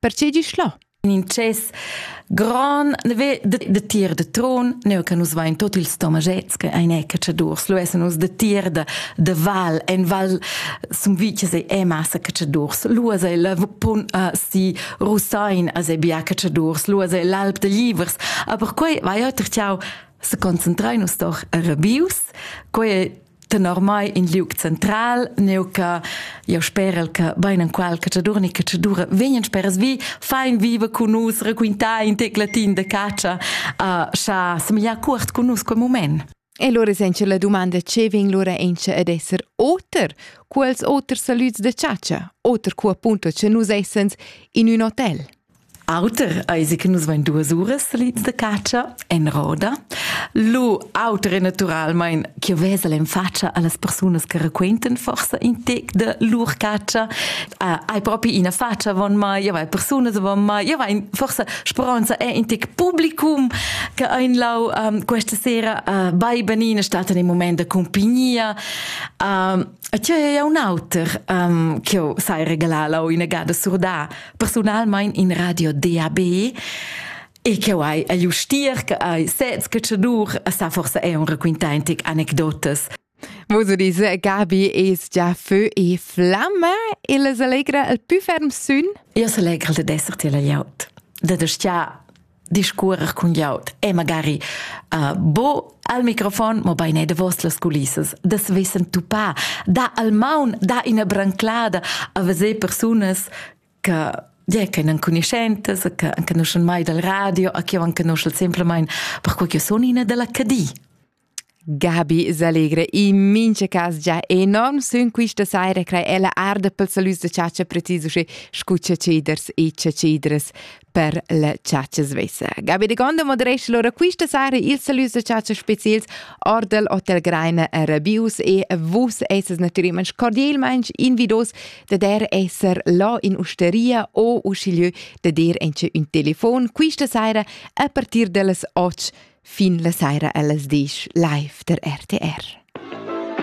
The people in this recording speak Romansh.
Perche gisch là? In intschess grand ve de, de tier de tron, neu che nus vain tot ils tomaschets che ein cacciadurs, lu essen nus de tier de, de val, en val sum viches e e massa cacciadurs, lu es ei la vupun uh, si Russain as ei bia cacciadurs, lu es ei l'alp de Livers, aber quei vai oter ciao se concentrai nus doch a Rabius, quei tenor mai in liug central neu che io sperel che bein en qual che dura che che dura vegnan speras vi fein viva con nus raquintar in tec latin de caccia uh, scha semiglia cuort con nus quel moment E lura senza la domanda ce vegn lura ence ad esser oter, quels oters salüds de caccia, oter cu appunto ce nus essens in un hotel. Auter eisi che nus vein duas uras salids da catscha en roda. Lu auter è naturalmein ch'jeu vesel en fatscha allas persunas che raquentan forsa in tec de lur catscha. Uh, hai propi ina fatscha avon mai, jeu hai persunas avon mai, jeu hai forsa speronza è in tec publicum che ein lau um, questa sera uh, bei benina staten in moment de compagnia. Um, e tgei ei un auter um, che sai regalar lau ina gada surdà personalmein in radio DAB e che hai a justier che hai sez che dur sa forse è un raquintaintic anecdotas Vos dis Gabi es già feu e flamma e les allegra il più ferm sün? Io s'allegra de d'esser tiel aut. De de sta discuorer cun glieud e magari uh, bo al microfon, mo bein e davos las culissas, das wissen tu pa, da al maun, da ina branclada a veser persunas che yeah, che non conoscentes, che conoscono mai dal radio, a che non conoscono semplicemente per quel che sono in della Cadi. Gabi s'allegra in mincha cas già enorm sün quista saira crai ella arda pel salüs da chatscha precis usche scu chatschiders e chatschidras per la chatscha svessa. Gabi de Gonda moderescha lura quista saira ils salüs da chatscha speziels or dal Hotel Greiner a Rabius e vus essas natüralmaing cordielmaing invidos da der esser là in usteria o uschigliö da der inche ün telefon quista saira a partir da las 8 Fin la saira ellas disch live der RTR.